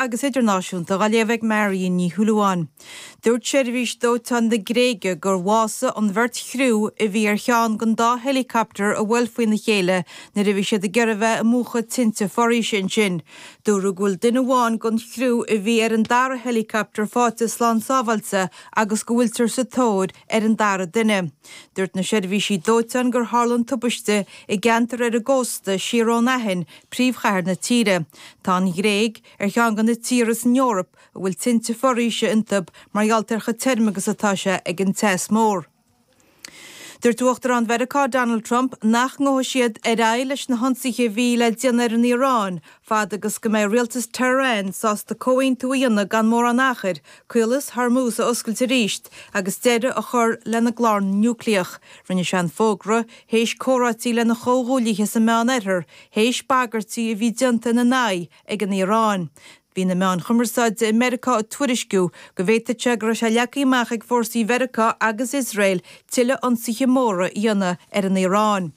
agus idirnáisiúnta dá léamh ag Marion Ní Shúilleabháin. Dúirt seirbhís dóiteáin na Gréige gur bhásaigh an bheirt chriú a bhí ar cheann den dá helicopter a bhuail faoina chéile nuair a bhí siad ag iarraidh bheith ag múchadh tinte foraoise ansin. Dúradh go bhfuil duine amháin den chriú a bhí ar an dara helicopter fáighte slán sábháilte agus go bhfuiltear sa tóir ar an dara duine. Dúirt na seirbhísí dóiteáin gur tharla an tubaiste i gceantar ar an gcósta siar ón Aithin príomhchathair na tíre. Tá an Ghréig ar cheann de na tíortha san Eoraip a bhfuil tinte foraoise iontu mar gheall ar chomh tirm agus atá sé ag an teas mór. Dúirt Uachtarán Mheiriceá Donald Trump nach ngabhadh siad ar aghaidh leis na hionsaithe a bhí le déanamh ar an Iaráin fad agus go mbeidh rialtas Tehran sásta comhaontú a dhéanamh gan mórán achair, Caolas Hormuz a oscailt arís agus deireadh a chur lena gclár núicléach. Rinne sé an fógra i. Théis comhráití lena chomhghuaillithe sa Meán Oirthear, théis bagairtí a bhí déanta ina n-aghaidh ag an Iaráin, bhí na meáin chumarsáide i Meiriceá ag tuairisciú go bhféadfadh go raibh sé leagtha amach ag fórsaí Mheiriceá agus Iosrael tuilleadh ionsaithe móra a dhéanamh ar an Iaráin.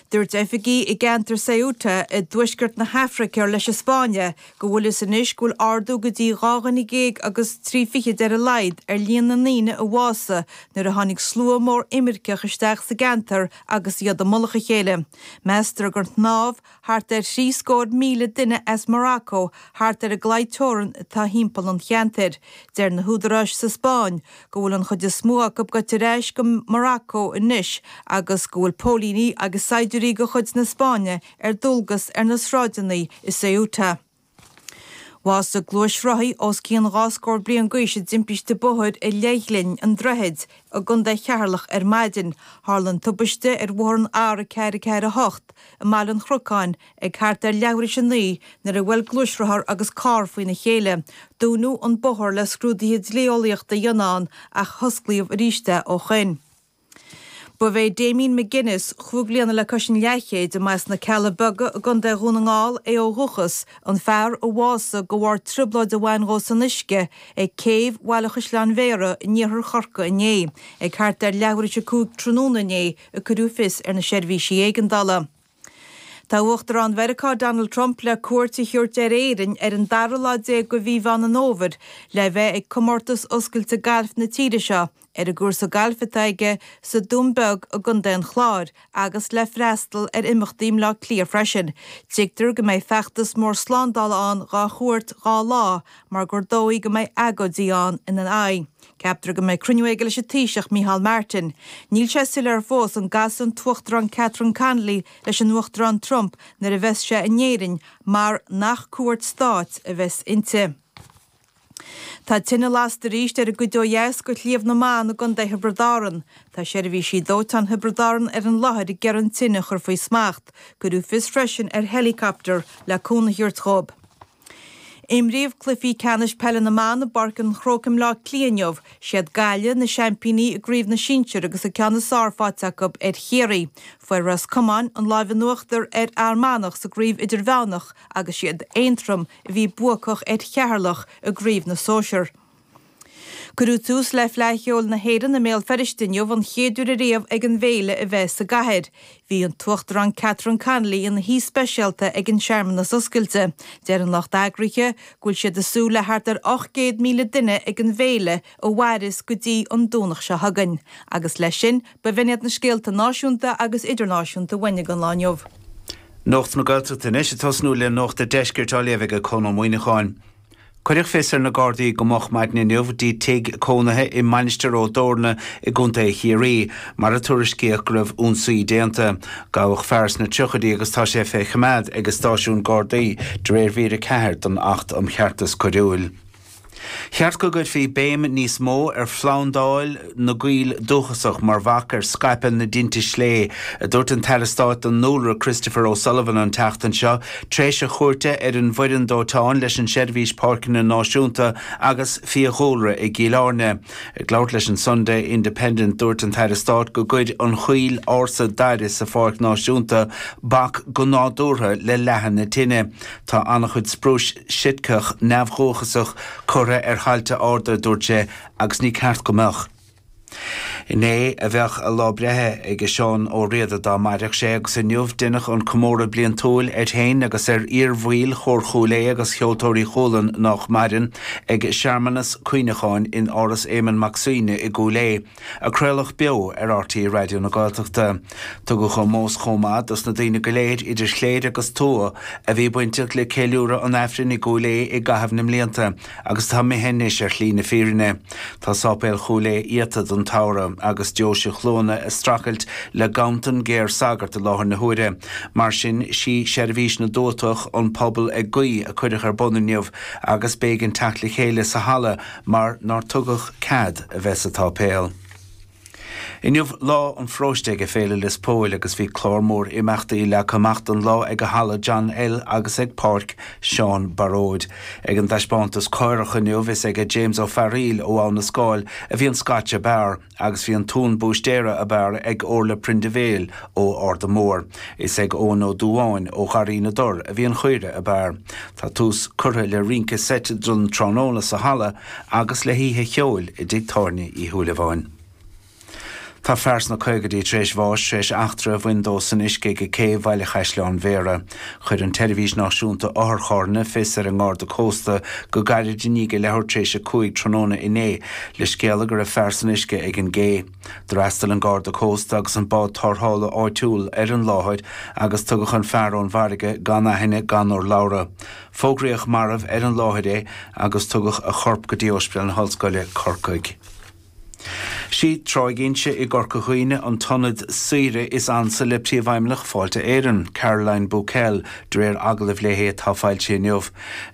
Dúirt oifigigh i gceantar Ceuta i dtuaisceart na hAfraice ar leis an Spáinn é go bhfuil a fhios anois go bhfuil ardú go dtí dhá dhuine dhéag agus trí fichid ar a laghad ar líon na ndaoine a bhásaigh nuair a tháinig slua mór imirceach isteach sa gceantar agus iad i mullach a chéile. Meastar gur shnámh thart ar thrí scór míle duine as Morocco thart ar an gclaí teorann atá thimpeall an cheantair. Deir na húdaráis sa Spáinn go bhfuil an chuid is mó acu gaibhte ar ais go Morocco anois agus go bhfuil póilíní agus saighdiúirí de chuid na Spáinne ar dualgas ar na sráideanna i Ceuta. Bhásaigh gluaisrothaí os cionn dhá scór bliain d'aois i dtimpiste bóthair i Leithghlinn an Droichid i gContae Cheatharlach ar maidin. Tharla an tubaiste ar bhóthar an R448 i mBaile an Chrocáin ag thart ar leathuair théis a naoi nuair a bhuail gluaisrothar agus carr faoina chéile. Dúnadh an bóthar le scrúduithe dlí-eolaíochta a dhéanamh ann ach hosclaíodh arís é ó shoin. Ba é Damien McGuinness, cúig bliana le cois an leathchéid, a mba as na Cealla Beaga i gContae Dhún na nGall é ó dhúchas, an fear a bhásaigh de bharr trioblóid a bhain dhó san uisce ag céibh Bhaile Chaisleáin Bhéarra in iarthar Chorcaí inné. Ag thart ar leathuair théis a cúig tráthnóna inné a cuireadh fios ar na seirbhísí éigeandála. Tá Uachtarán Mheiriceá Donald Trump le cuairt a thabhairt ar Éirinn ar an dara lá déag de mhí Mheán an Fhómhair le a bheith ag comórtas oscailte gailf na tíre seo ar an gcúrsa gailf atá aige sa Dún Beag i gContae an Chláir agus le freastal ar imeachtaí i mBleá Cliath freisin. Tuigtear go mbeidh feachtas mór slándála ann dhá chuairt dhá lá mar gur dóigh go mbeidh agóidí ann ina aghaidh. Ceaptar go mbeidh cruinniú aige leis an Taoiseach Micheál Martin. Níl sé soiléir fós an gcasfaidh an tUachtarán Catherine Connolly leis an Uachtarán Trump nuair a bheas sé in Éirinn mar nach cuairt stáit a bheas inti. Tá tine lasta arís ar an gcuid ó dheas de Shliabh na mBan i gContae Thiobraid Árann. Tá seirbhísí dóiteáin Thiobraid Árann ar an láthair ag iarraidh an tine a chur faoi smacht. Cuireadh fios freisin ar helicopter le cúnamh a thabhairt dhóibh. Imríodh cluichí ceannais peile na mban i bPáirc an Chrócaigh i mBleá Cliath inniu. Siad Gaillimh, na seaimpíní i gcraobh na sinsear agus an ceann is fearr faighte acu ar Chiarraí. Fuair Ros Comáin an lámh in uachtar ar Fhear Manach sa gcraobh idirmheánach agus siad Aontroim a bhí buacach ar Cheatharlach i gcraobh na sóisear. Cuireadh tús le Fleadh Cheoil na hÉireann i mBéal Feirste inniu, an chéad uair ariamh ag an bhféile a bheith sa gcathair. Bhí an tUachtarán Catherine Connolly ina haoi speisialta ag an searmanas oscailte. Deir an lucht eagraithe go bhfuil siad ag súil le thart ar 800,000 duine ag an bhféile a mhairfeas go dtí an Domhnach seo chugainn agus leis sin b'in iad na scéalta náisiúnta agus idirnáisiúnta uainn don lá inniu. Nuacht na Gaeltachta anois, ag tosnú le nuacht an deiscirt á léamh ag Conn Ó Muíneacháin. Cuireadh fios ar na Gardaí go moch maidin inniu go dtí tigh cónaithe i Mainistir Ó dTorna i gContae Chiarraí, mar a tuairiscíodh go raibh ionsaí déanta. Gabhadh fear sna tríochaidí agus tá sé fé choimeád ag stáisiún Gardaí de réir mhír 4 den Acht um Cheartas Coiriúil. Cheart go gcuirfí béim níos mó ar phlandáil. na gcoill dúchasach mar bhac ar scaipeadh na dtinte sléibhe, a dúirt an tAire Stáit don nDúlra Christopher O'Sullivan an tseachtain seo, tar éis a chuairte ar an bhfoireann dóiteáin leis an tSeirbhís Páirceanna Náisiúnta agus Fiadhúlra i gCill Airne. Ag labhairt leis an Sunday Independent, dúirt an tAire Stáit go gcuir an choill ársa daire sa Pháirc Náisiúnta bac go nádúrtha le leathadh na tine. Tá an-chuid sprúis Sitceach neamhdhúchasach curtha ar thailte arda, a dúirt sé, Agus ní ceart go mbeadh. Inné a bheadh a lá breithe ag Seán Ó Riada dá mairfeadh sé agus inniu deineadh an comóradh bliantúil air féin agus ar iar-bhaill Chór Chúil Aodha agus Cheoltóirí Chualann nách maireann ag searmanas cuimhneacháin in Áras Éamon Mac Suibhne i gCúil Aodha a craoladh beo ar RTÉ Raidió na Gaeltachta. Tugadh ómós chomh maith dos na daoine go léir idir chléir agus tuath a bhí bainteach le ceiliúradh an Aifrinn i gCúil Aodha i gcaitheamh na mblianta, Agus atá imithe anois ar shlí na fírinne. Tá Sáipéal Chúil Aodha iata don tsamhradh agus Deoise Chluana ag strachailt le ganntan géar sagart i láthair na huaire. Mar sin, sí seirbhís na dtuatach, An Pobal ag Guí, a cuireadh ar bun inniu agus b'éigean teacht le chéile sa halla mar nár tugadh cead a bheith sa tsáipéal. Inniu lá an pharóiste ag Féile Lios Póil agus bhí clár mór imeachtaí leagtha amach don lá ag a Halla John L agus ag Páirc Seán Baróid. Ag an dtaispeántas Caorach inniu is aige James Ó Fearaíl ó Abha na Scáil a bhí an Scotch ab fhearr agus bhí an t-uan búistéara ab fhearr ag Orla Prendiville ó Arda Mór. Is ag Eoin Ó Dubháin ó Gharraí na dTor a bhí an chaora ab fhearr. Tá tús curtha le rince seit don tráthnóna sa Halla, agus le hoíche cheoil i dtigh tábhairne Uí Shúilleabháin. Tá fear sna caogaidí tar éis bháis tar éis eachtra a bhain dó san uisce ag cé Bhaile Chaisleáin Bhéarra. Chuir an tSeirbhís Náisiúnta Otharcharranna fios ar an nGarda Cósta go gairid i ndiaidh a leathuair tar éis a cúig tráthnóna inné le scéala go raibh fear san uisce ag an gcé. D'fhreastail an Garda Cósta agus an bád tárrthála áitiúil ar an láthair agus tugadh an fear ón bhfarraige gan aithne gan urlabhra. Fógraíodh marbh ar an láthair é agus tugadh a chorp go dtí Óispidéal na hOllscoile, Corcaigh. Sí Tráigh Inse i gCorca Dhuibhne an t-ionad saoire is ansa le Príomhfheidhmeannach Fáilte Éireann, Caroline Bocquel, de réir agallaimh léi atá foilsithe inniu.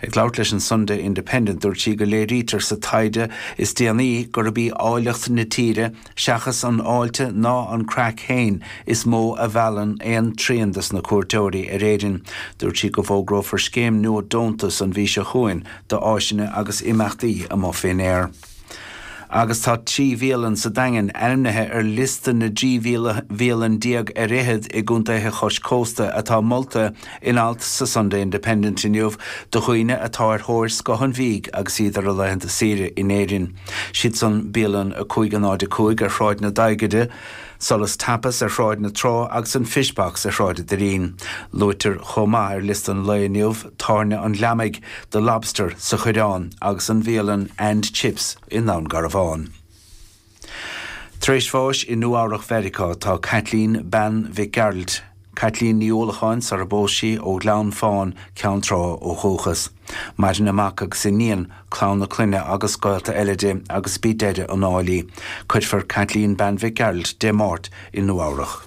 Ag labhairt leis an Sunday Independent dúirt sí go léirítear sa taighde is déanaí gurb í áilleacht na tíre, Seachas an fháilte ná an craic féin is mó a mheallann aon trian des na cuairteoirí ar Éirinn. Dúirt sí go bhfógrófar scéim nua deontas an mhí seo chugainn d'áiseanna agus imeachtaí amuigh faoin aer. Agus tá trí bhialann sa Daingean ainmnithe ar liosta na dtrí bhialann déag ar fhichead i gcontaetha cois cósta atá molta. In alt sa Sunday Independent inniu do dhaoine atá ar thóir scoth an bhídh agus iad ar a laethanta saoire in Éirinn, siad san bialann 505 ar Shráid na Daigede, Solas Tapas ar Shráid na Trá agus an Fish Box ar Shráid a' Doirín. Luaitear chomh maith ar liosta an lae inniu tábhairne an Ghliomaigh, The Lobster sa Choireán agus an bhialann And Chips i nDún Garbhán. Tar éis bháis i Nua-Eabhrac Mheiriceá atá Caitlín Bean Mhic Gearailt, Caitlín Ní Uallacháin sarar phós sí ó Ghleann Fán, Ceann Trá ó dhúchas. Maireann a mac agus iníon, clann a clainne agus gaolta eile di agus b'í deireadh an áil í. Cuirfear Caitlín Bean Mhic Gearailt Dé Máirt i Nua-Eabhrac.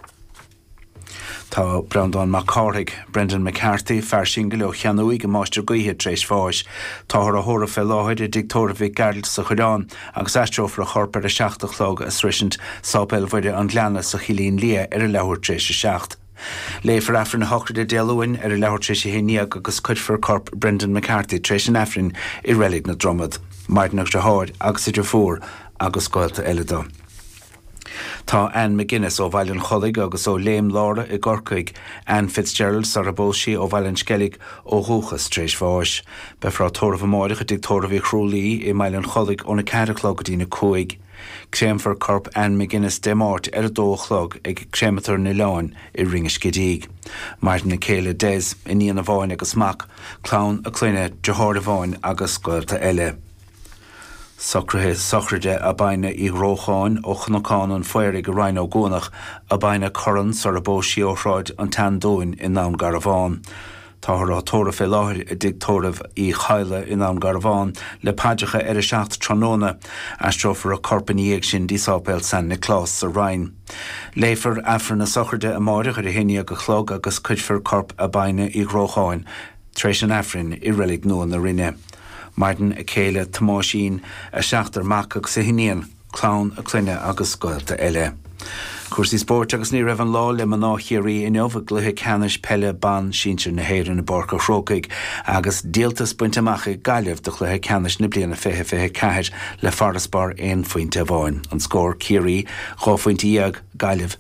Tá Breandán Mac Cárthaigh, Brendan McCarthy, fear singil ó Cheannúigh i Máistir Gaoithe tar éis bháis. Táthar á thórramh fé láthair i dtigh tórraimh Mhic Gearailt sa Choireán agus aistreofar a chorp ar a seacht a chlog ag sroisint Sáipéal Mhuire an Ghleanna sa Chillín Liath ar an leathuair tar éis a seacht. Léifear Aifreann a shochraide Dé Luain ar an leathuair tar éis a haon déag agus cuirfear corp Brendan McCarthy tar éis an Aifrinn i Reilig na Dromad. Maireann a dheartháir agus a dheirfiúr agus gaolta eile do. Tá Ann McGuinness ó Bhaile an Chollaigh agus ó Léim Lára i gCorcaigh, Ann Fitzgerald, sar a bpós sí, ó Bhaile an Sceilg ó dhúchas, tar éis bháis. Beifear á tórramh amáireach i dTigh Tórraimh Uí Chrualaoí i mBaile an Chollaigh óna ceathair a chlog go dtína cúig. Créamfar corp Ann McGuinness Dé Máirt ar a dó a chlog ag Créamatar an Oileáin i Rinn an Scidígh. Maireann a céile Des, iníon amháin agus mac, clann a clainne, deartháir amháin agus gaolta eile. Socruithe sochraide Abina Uí Dhrócháin ó Chnocán an Phaoraigh i Rinn Ó gCuanach, Abina Curran sar a bpós sí, ó Shráid an tSeandúin i nDún Garbhán. Táthar á tórramh fé láthair i dTigh Tórraimh Uí Chadhla i nDún Garbhán le paidreacha ar a seacht tráthnóna. Aistreofar a corp ina dhiaidh sin dtí Sáipéal San Nioclás sa Rinn. Léifear aifreann na sochraide amáireach ar a haon déag a chlog agus cuirfear corp Abina Uí Dhrócháin Tar éis an Aifrinn i Reilig Nua na Rinne. Maireann a céile, Tomáisín, a seachtar mac agus a hiníon, clann a clainne agus gaolta eile. Cúrsaí spóirt agus ní raibh an lá le mná Chiarraí inniu i gcluiche ceannais peile ban sinsir na hÉireann i bPáirc a' Chrócaigh agus díoltas bainte amach ag Gaillimh do chluiche ceannais na bliana 2024 le farasbarr aon phointe amháin, an scór, Ciarraí, dhá phointe dhéag, Gaillimh.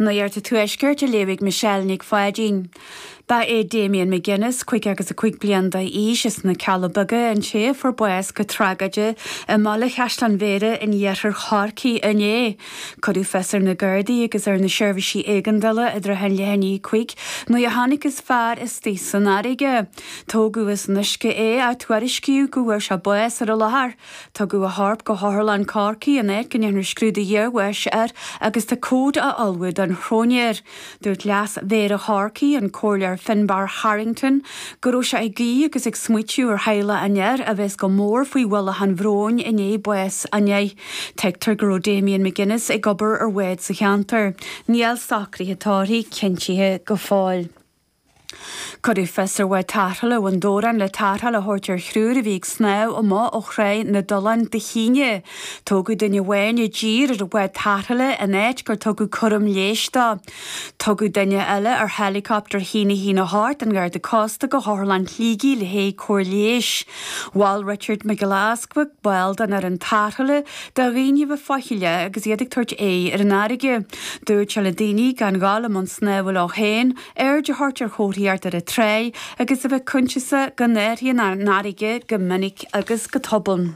Nuacht an Tuaiscirt á léamh ag Michelle Nic Pháidín. Ba é Damian McGuinness, 55 bliain d'aois, as na Cealla Beaga, an té a fuair bás go tragóideach i mBaile Chaisleáin Bhéarra in iarthar Chorcaí inné. Cuireadh fios ar na Gardaí agus ar na seirbhísí éigeandála i dtrátha an leath i ndiaidh a cúig nuair a thángthas ar fhear istigh san fharraige. Tógadh as an uisce é ach tuairiscíodh go bhfuair sé bás ar an láthair. Tugadh a chorp go hOtharlann Chorcaí an áit go ndearnadh scrúdú iarbháis air agus tá comhad á ullmhú don chróinéir. Dúirt Leas-Mhéara Chorcaí, an Comhairleoir Finbarr Harrington, go raibh sé ag guí agus ag smaoitiú ar theaghlach an fhir a bheas go mór faoi ualach an bhróin i ndiaidh báis a nia. Tuigtear go raibh Damien McGuinness ag obair ar bhád sa cheantar. Níl socruithe tórraimh cinntithe go fóill. Cuireadh fios ar bhád tarrthála Bhun Dobhráin le tarrtháil a thabhairt ar thriúr a bhí ag snámh amach ó Thráigh na dTulán Dé hAoine. Tógadh duine amháin i dtír ar an bhád tarrthála an áit gur tugadh cúram leighis dó. Tugadh duine eile ar héileacaptar a haon a haon a hocht den Gharda Cósta go hOtharlann Shligigh le haghaidh cóir leighis. Mhol Richard Mac Giolla Easpaig ball den fhoireann tarrthála do dhaoine a bheith faichilleach agus iad ag tabhairt aghaidh ar an fharraige. Dúirt sé le daoine gan ghabháil i mbun snámha leo féin. Aird a thabhairt ar chomharthaíocht ar an tráigh agus a bheith coinsiasach go n-athraíonn an fharraige go minic agus go tobann.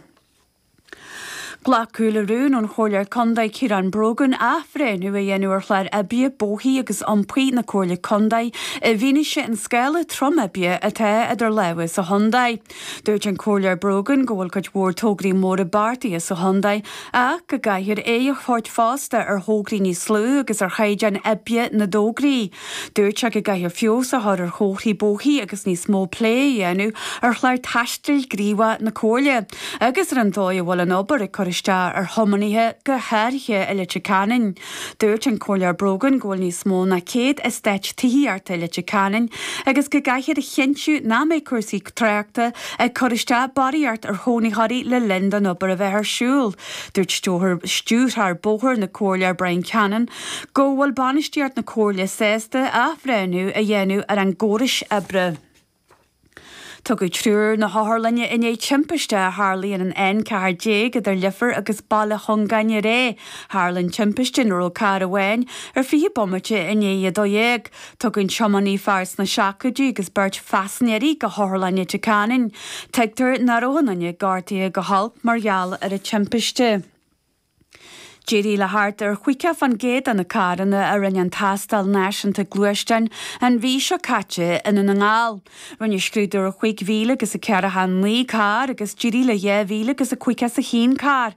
Glacadh le rún ón Chomhairleoir Contae Ciarán Brogan athbhreithniú a dhéanamh ar Chlár Oibre Bóithre agus Iompair na Comhairle Contae i bhfianaise an scála trom oibre atá idir lámha sa chontae. Dúirt an Comhairleoir Brogan go bhfuil cuid mhór tograí móra beartaithe sa chontae ach go gcaithfear aoidh a thabhairt fosta ar thograí níos lú agus ar chaighdeáin oibre na dtograí. Dúirt sé go gcaithfear feabhas a chur ar chomharthaí bóithre agus níos mó plé a dhéanamh ar chlár taistil gníomhach na Comhairle agus ar an dóigh a bhfuil an obair ag cur isteach ar thiománaithe go háirithe i Leitir Ceanainn. Dúirt an Comhairleoir Brogan go bhfuil níos mó ná 100 eastáit tithí thart ar Leitir Ceanainn agus go gcaithfear a chinntiú nach mbeidh cúrsaí tráchta ag cur isteach barraíocht ar chónaitheoirí le linn don obair a bheith ar siúl. Dúirt Stiúrthóir Bóthar na Comhairle Brian Cannon go bhfuil bainistíocht na Comhairle sásta athbhreithniú a dhéanamh ar a gcórais oibre. Tugadh triúr na hotharlainne i ndiaidh timpiste a tharlaigh ar an N14 idir Leifear agus Baile Chuinneagáin aréir. Tharla an timpiste ina raibh carr amháin ar 20 bomaite i ndiaidh a 12. Tugadh an tiománaí, fear sna seascaidí, agus beirt phaisnéirí go hotharlainn Leitir Ceanainn. Tuigtear nach raibh aon duine gortaithe go holc mar gheall ar an timpiste. D'éirigh le thart ar chaoga faoin gcéad de na carranna a rinne an tástáil náisiúnta gluaisteáin an mhí seo caite i nDún na nGall. Rinneadh scrúdú ar chúig mhíle agus a ceathracha a naoi carr agus d'éirigh le dhá mhíle agus a caoga is a haon carr.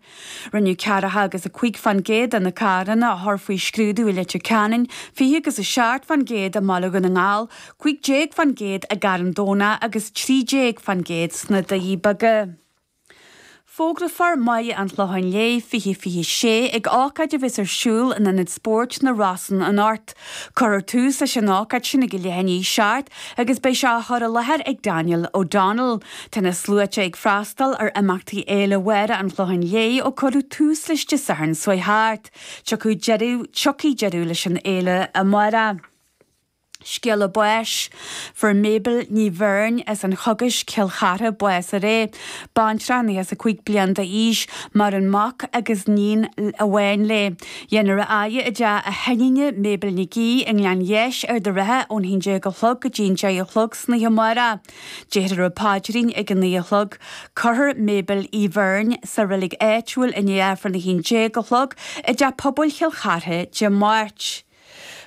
Rinneadh ceathracha agus a cúig faoin gcéad de na carranna a chur faoi scrúdú i Leitir Ceanainn, fiche agus a seacht faoin gcéad i mBaile Dhún na nGall, cúig déag faoin gcéad i gCarn Domhnach agus trí déag faoin gcéad sna Doirí Beaga. Fógrófar Máire an Chlocháin Léith 2026 ag ócáid a bheas ar siúl in Ionad Spóirt na Rosann anocht. Cuirfear tús leis an ócáid sin ag leath i ndiaidh a seacht agus beidh sé á chur i láthair ag Daniel O'Donnell. Tá na sluaite ag freastal ar imeachtaí Fhéile Mháire an Chlocháin Léith ó cuireadh tús leis Dé Sathairn seo thart. Tiocfaidh deireadh, tiocfaidh deireadh leis an fhéile amárach. Scéala báis. Fuair Mabel Ní Bheirn as an Chogais, Cill Chartha, bás aréir. Baintreach 95 bliain d'aois. Maireann mac agus níon amháin léi. Dhéanfar í a fhaire i dteach a hiníne, Mabel Nic Aoidh, i nGleann Gheis, Ard an Rátha ón haon déag a chlog go dtí an deich a chlog san oíche amárach. Déarfar an paidrín ag a naoi a chlog. Cuirfear Mabel Uí Bheirn sa reilig áitiúil i ndiaidh aifreann a haon déag a chlog i dTeach Pobail Chill Chartha Dé Máirt.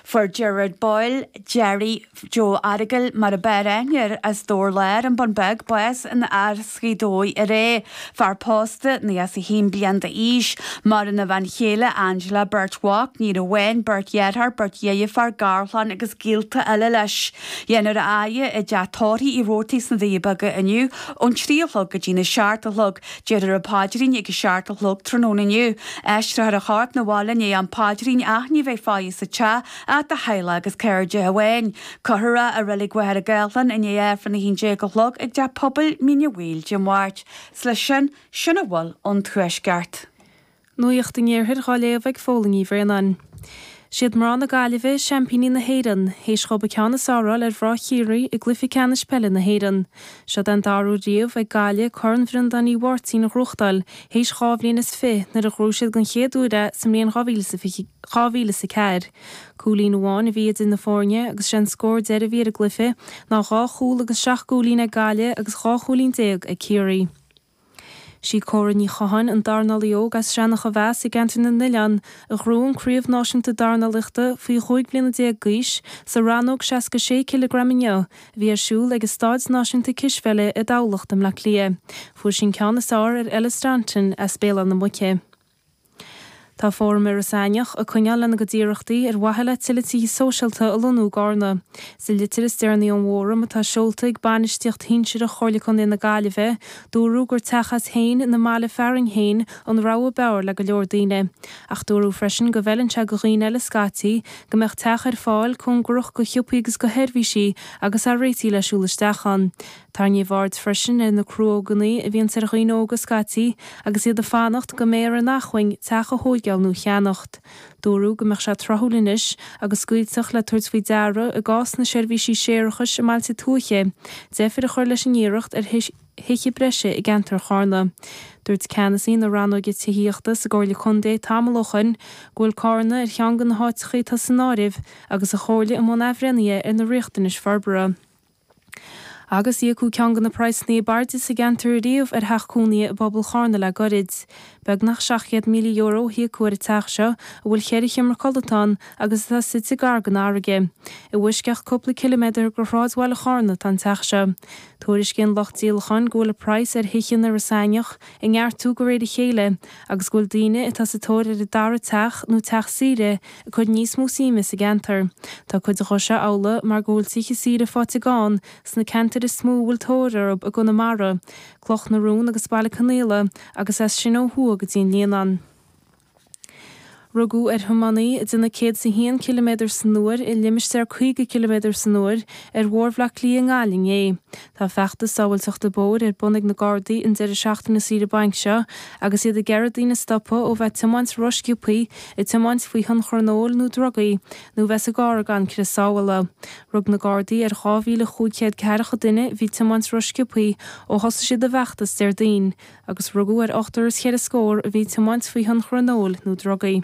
Fuair Gerard Boyle, Gerry Joe Errigal mar ab fhearr aithne air as Dobhar Láir, An Bun Beag, bás in Áras Ghaoth Dobhair aréir. Fear pósta, 91 bliain d'aois. Maireann a bhean chéile Angela, beirt mhac, níon amháin, beirt dhearthár, beirt dheirfiúr, garchlann agus gaolta eile leis. Dhéanfar é a fhaire i dteach tórraimh Uí Robhartaigh sna Doirí Beaga inniu ón trí a chlog go dtí an seacht a chlog. Déarfar an paidrín ag a seacht a chlog tráthnóna inniu. Aistreothar a chorp 'na bhaile i ndiaidh an phaidrín ach ní bheidh faire sa teach ach do theaghlach agus cairde amháin. Cuirfear é i Reilig Mhachaire Gathlán i ndiaidh Aifreann 11 a chlog i dTeach Pobail Mhín Uí Bhaoill Dé Máirt. Is leis sin, sin a bhfuil ón Tuaisceart. Nuacht an Iarthair dhá léamh ag Fódhla Ní Bhraonáin. Siad mná na Gaillimhe seaimpíní na hÉireann, théis dhób an ceann is fearr a fháil ar mhná Chiarraí i gcluiche ceannais peile na hÉireann. Seod é an dara uair riamh ag Gaillimh Corn Bhreandáin Uí Mháirtín a ghnóthachtáil, théis dhá bhliain is fiche, nuair a ghnóthaigh siad den chéad uair é sa mbliain 2004. Cúilín amháin a bhí idir na foirne agus sé an scór deiridh a bhí ar an gcluiche ná dhá chúl agus seacht gcúilín ag Gaillimh agus dhá chúilín déag ag Ciarraí. Sí Cora Ní Chatháin, an dornálaí óg as Seanach Mhéas i gceantar na nOileán, a ghnóthaigh an Chraobh Náisiúnta Dornálaíochta faoi chúig bliana déag d'aois sa rannóg 66 cileagram inniu, a bhí ar siúl ag an Staid Náisiúnta Cispheile i dTamhlacht i mBleá Cliath. Fuair sí an ceann is fearr ar Ella Staunton as Béal Átha na Muice. Tá Fóram Iorras Aithneach ag coinneáil lena gcuid iarrachtaí ar mhaithe le tuilleadh tithe sóisialta a lonnú i gCarna. Sa litir is deireanaí ón bhfóram, atá seolta chuig bainistíocht shinsearach Chomhairle Contae na Gaillimhe, dúradh gur teach as féin ina mbaile fearainn féin an rogha b'fhearr le go leor daoine. Ach dúradh freisin go bhfeileann sé do dhaoine eile scaití, go mbeadh teach ar fáil cóngarach do shiopaí agus do sheirbhísí agus a réiteach le siúl isteach ann. Tarraingíodh aird freisin ar na cruóganna a bhíonns ar dhaoine óga scaití agus iad ag fanacht go mbeidh ar a n-acmhainn teach a thóigeáil nó a cheannacht. Dúradh go mbeadh sé tráthúil anois agus scaoilteacht le tabhairt faoi deara i gcás na seirbhísí séarachais i mbailte tuaithe, deifir a chur leis an iarracht ar thithe breise i gceantar Charna. Dúirt ceannasaí na rannóige tithíochta sa gComhairle Contae tamall ó shoin go bhfuil Cárna ar cheann de na háiteachaí atá san áireamh agus an Chomhairle i mbun athbhreithnithe ar na riachtanais forbartha. Agus íocadh ceann de na praghsanna ab airde sa gceantar riamh ar theach cónaithe i bpobal Charna le gairid. Beagnach €700,000 a híocadh ar an teach seo a bhfuil ceithre sheomra codlata ann agus atá suite gar don fharraige. I bhfoisceacht cúpla ciliméadar go shráidbhaile Charna atá an teach seo. Tuairiscíonn lucht díolacháin go bhfuil an praghas ar thithe in Iorras Aithneach ag neartú de réir a chéile, agus go bhfuil daoine atá sa tóir ar a dara teach nó teach saoire ag cur níos mó suime sa gceantar. Tá cuid dhó seo amhlaidh mar go bhfuil tithe saoire faighte gann sna ceantair is mó a bhfuil tóir orthu i gConamara, Cloch na Rón agus Baile Conaola, agus as sin ó thuaidh go dtí an Líonán. Rugadh ar thiománaí ag déanamh 101 ciliméadar san uair i limistéar 50 ciliméadar san uair ar Bhóthar Bhleá Cliath i nGaillimh inné. Tá feachtas sábháilteachta bóthair ar bun ag na Gardaí an deireadh seachtaine saoire bainc seo agus iad ag iarraidh daoine a stopadh ó bheith tiomáint rósciobthaí, ag tiomáint faoi thionchar an óil nó drugaí, nó bheith sa gcarr gan crios sábhála. Rug na Gardaí ar 2,500 ceathracha duine a bhí ag tiomáint rósciobthaí ó thosaigh siad a bhfeachtas Déardaoin. agus rugadh ar ochtar is cheithre scór a bhí ag tiomáint faoi thionchar an óil nó drugaí.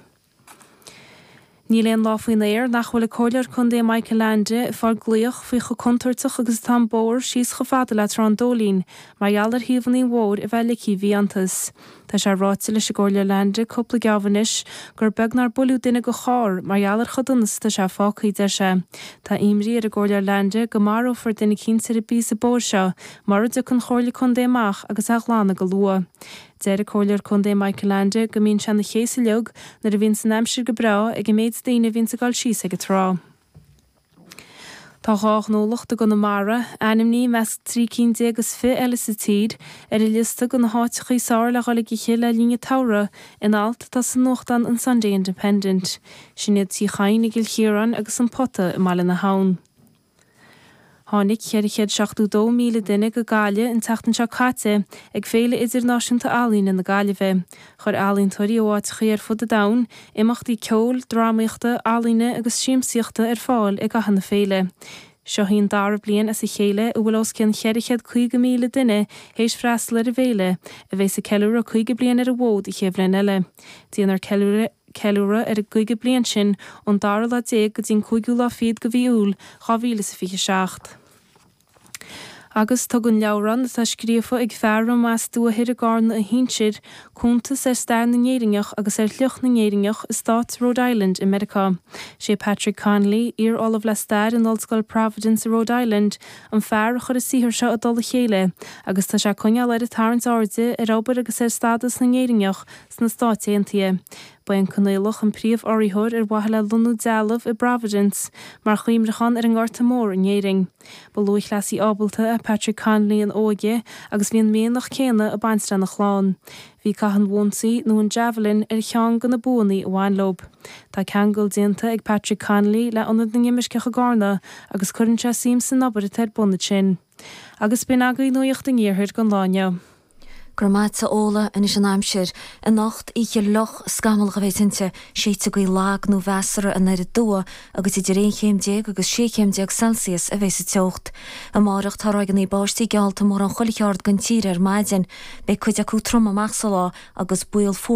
Níl aon lá faoin aer nach bhfuil an Comhairleoir Contae Michael Leainde ag fáil glaoch faoi chomh contúirteach agus atá an bóthar síos chomh fada le Trá an Dóilín mar gheall ar thaobhannaí an bhóthair a bheith ligthe i bhfiántas. Tá sé ráite leis an gComhairleoir Leainde cúpla geábh anois gur beag nár buaileadh duine de charr mar gheall ar chomh dona is atá sé fágtha, deir sé. Tá imní ar an gComhairleoir Leainde go marófar duine cinnte ar an bpíosa bóthair seo Mura dtiocfaidh an Chomhairle Contae amach agus é a ghlanadh go luath. Deir an Comhairleoir Contae Michael Leainde go mbíonn sé ina chéasadh uilig nuair a bhíonns an aimsir go breá ag an méid daoine a bhíonns ag dul síos ag an trá. Tá dhá ghnólacht i gConamara, ainmnithe i measc trí cinn déag is fiche eile sa tír, ar an liosta de na háiteacha is fearr le dhul ag ithe le linn an tsamhraidh, in alt atá sa nuachtán an Sunday Independent. Sin iad Tí Chadhain i gCill Chiaráin agus An Pota i mBaile na hAbhann. Tháinig 472,000 duine go Gaillimh an tseachtain seo caite ag Féile Idirnáisiúnta Ealaíne na Gaillimhe. Chuir ealaíontóirí ó áiteachaí ar fud an domhain imeachtaí ceoil, drámaíochta, ealaíne agus siamsaíochta ar fáil i gcaitheamh na féile. Seo í an dara bliain as a chéile a bhfuil os cionn 450,000 duine théis freastal ar an bhféile, a bheas ag ceiliúradh 50 bliain ar an bhfód an chéad bhliain eile. Déanfar ceiliúradh ar. ceiliúradh ar an gcaoga bliain sin ón dara lá déag go dtí an cúigiú lá fichead de mhí Iúil 2027. Agus tugann leabhrán atá scríofa ag fear a mba as Dumhaigh Ithir i gCarna a shinsir, cuntas ar stair na nÉireannach agus ar shliocht na nÉireannach i stát Rhode Island i Meiriceá. Sé Patrick Conley, iar-ollamh le stair in Ollscoil Providence i Rhode Island, an fear a chuir an saothar seo i dtoll a chéile agus tá sé ag coinneáil air ag tarraingt airde ar obair agus ar stádas na nÉireannach sna Stáit Aontaithe. Ba é an Conaolach an príomh-urraitheoir ar mhaithe le lonnú dealbh i bProvidence mar chuimhneachán ar an nGorta Mór in Éirinn. Ba lúthchleasaí ábalta é Patrick Conley ina óige agus bhí an mianach céanna ag baint lena chlann. Bhí caitheamh an bhonsaí, nó an Javelin, ar cheann de na buanna a bhain leo. Tá ceangal déanta ag Patrick Conley le hIonad na nImirceach i gCarna agus cuireann sé suim san obair atá ar bun ansin. Agus b'in agaibh nuacht an Iarthair don lá inniu. Go raibh maith agat Ola, anois an aimsir. Anocht oíche fhliuch, scamallach a bheidh inti séidfidh gaoth lag nó measartha aniar aduaidh agus idir aon chéim déag agus sé chéim déag Celsius a bheidh sa teocht. Amárach tá ráigeanna báistí geallta mórán chuile cheard den tír ar maidin. Beidh cuid acu trom amach sa lá agus baol fuar